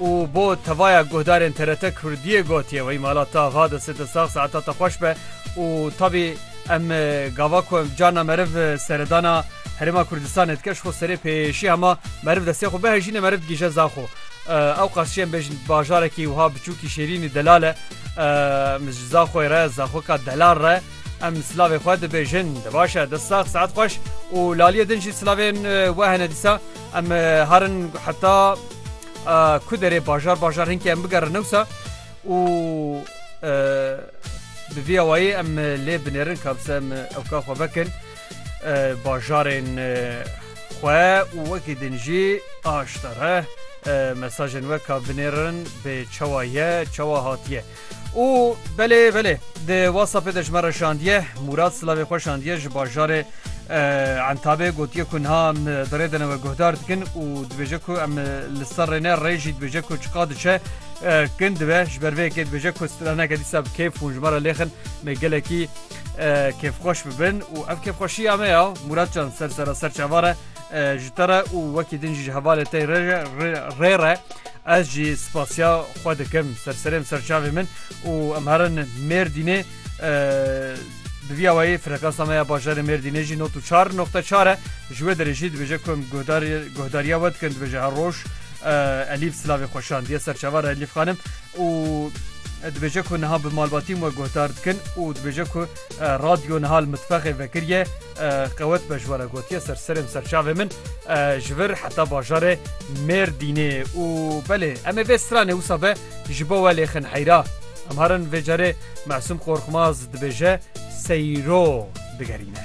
û bo tevaya guhdarên TRT Kurdiyê gotiye wey mala ta va di sete sax saeta te xweş be û tabî em gava ku em carna meriv seredana Herêma Kurdistanê dike ji xwe serê pêşî hema meriv destê xwe bihejîne meriv digîje za xwe ewqas jî em bêjin bajarekî wiha biçûkî Şêrînî delal e em ji za xwe re zaxwika delal re em silavê xwe dibêjin di baş e dest sax saet xweş û laliyê din jî silavên we hene dîsa Em harin heta ku derê bajar bajar hinkê em bigerin newsa û bi vî awayî em lê binêrin ka bise em ew ka xwe vekin bajarên xwe û wekî din jî aştare mesajên we ka binêrin bê çawa ye çawa hatiye. Û belê belê di whatsappê de ji me re şandiye. Mûrad silavê xwe şandiye ji bajarê Entabê gotiye ku niha em di rê de ne we guhdar dikin û dibêje ku em li ser rê ne rê jî dibêje ku çiqa diçe kin dibe ji ber vê yekê dibêje ku straneke dîsa bi kêf hûn ji me re lêxin me gelekî kêfxweş bibin û ev kêfxweşiya me ya Mûrad can ser sera ser çavan re ji te re û wekî din jî ji hevalê te re rê re Ez jî spasiya xwe dikim ser serê em ser çavê min û em herin Mêrdînê bi vî awayî frekansa me ya bajarê Mêrdînê jî nod û çar noqte çar e ji wê derê jî dibêje ku em guhdar guhdarîya we dikin dibêje her roj Elîf silavê xwe şandiye ser çavan re Elîf xanim û dibêje ku niha bi malbatîm we guhdar dikin û dibêje ku Radyo niha li mitfexê vekiriye qewet be ji we re gotiye ser serên serçavê min ji vir heta bajarê Mêrdînê û belê em ê vê stranê wisa be ji bo we lêxin heyra em harin vê carê Mesûm Qorxmaz dibêje seyro digerîne.